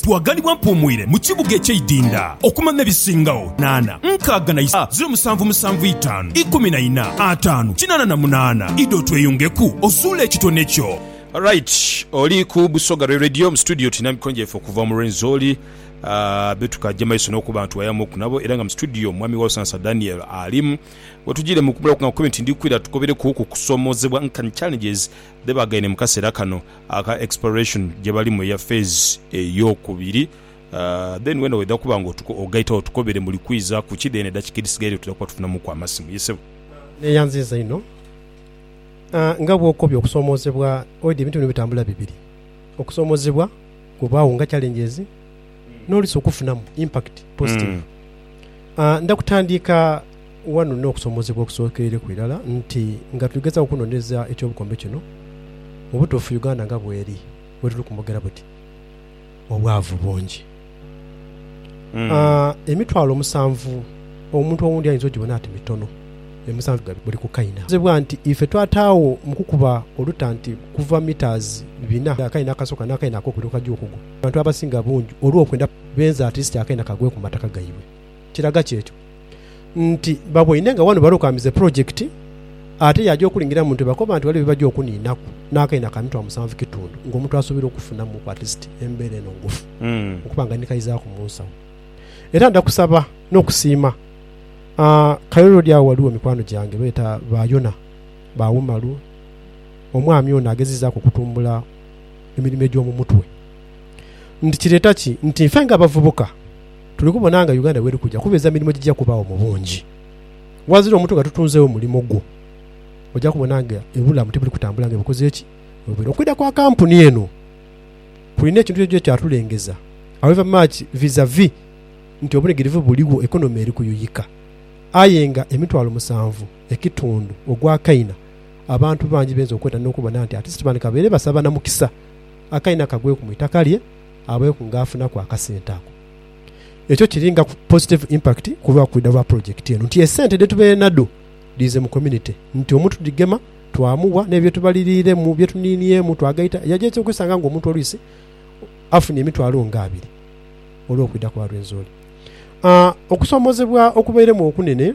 Twaganibwa mpuumwire mu kibuga eky'eidinda okumanya ebisingagho naana, nkaaga na isaa, ziro musanvu musanvu itaanu, ikumi na ina, ataanu, kinaana na munaana. Idha otweyungeku ozuule ekitone kyo. Alright oli ku Busoga Rwe Radio mu studio tulina mikwano gyaife okuva mu Rwenzori betukaja maiso nokuba nti wayamu ku nabo era nga mu studio mwami Walsansa Daniel alimu wetujire mukumulaku nga nkube nti ndikwira tugobereku ku kusomozebwa nkanhi challenges dhebagaine mukasera kano. aka exploration jebalimu eya phase eyokubiri then wena wedha kuba nga ogaita agho tukobere mbu likwiza kuki then edakika edhisigaire tudha kuba tufunamuku amasimu ye sebo. Neyanziiza inho nga bwokobye okusomozebwa. Oidhi ebintu bino bitambula bibiri, okusomozebwa kubaagho nga challenges. nolwisi okufunamu impact positive. Ndha kutandiika ghano n'okusomozebwa okusookerereku irala nti nga tuli gezaaku okunonereza eky'obukombe kino, mu butuufu Uganda nga bweri we tuli kumogera buti, obwavu bungi. Emitwalo musanvu omuntu owundi ayinza ogibona ati mitono, aye musanvu gya buli ku kaina. Kitegezebwa nti ife twataagho mu kukuba oluta nti kuva metres bina akaina akasooka n'akaina akokubiri okajja okugwa. abantu abasinga bungi olw'okwenda benze atilisiti akaina kagwe ku mataka gaibwe. Kiraga ki ekyo? Nti baboine nga wano balokaamiza epulojekiti ate yaaja okulingira mu ntebe akoba nti waliwo bye baja okuniinaku n'akaina ka mitwalo musanvu kitundu ng'omuntu asuubirwa okufunamuku atilisiti embeera eno ngufu okuba nga nikaizaaku mu nsawo. Era nda kusaba n'okusiima Kairo Road agho ghaligho mikwano gyange beeta ba Yona, ba Umaru, omwami ono agezezaaku okutumbula emirimo egy'omu mutwe. Nti kireeta ki nti ife ng'abavubuka tuli kubona nga Uganda bw'eri kuja kubeeza mirimo egija kubaagho mu bungi? Ghazira omuntu nga tutunzeegho mulimo gwo, oja kubona nga ebulamu tibuli kutambula nga bwe bukoze ki bwe bwira. Okwidha kwa kampuni eno kulina ekintu kyonakyona kye kyatulengeza, however much vis-a-vis nti obunhigirivu buligho, economy eri kuyuyika aye nga emitwalo musanvu, ekitundu ogwa Kaina, abantu bangi bainza okweta n'okubona nti ati Sitefano kabaire basaba na mukisa Akaina kagweku mu itaka lye abeeku ng'afunaku akasente ako. Ekyo kiri nga positive impact ku lwa kwidha lwa pulojekiti eno nti esente dhetubaire nadho dhiize mu community nti omuntu tudhigema twamuwa n'ebyo bye tubaliriiremu, bye tuniiniemu twagaita. Yaja aitse okwesanga ng'omuntu olwisi afunye emitwalo nga abiri olw'okwidha kwa Rwenzori. Aa Okusoomoozebwa okubairemu okunene.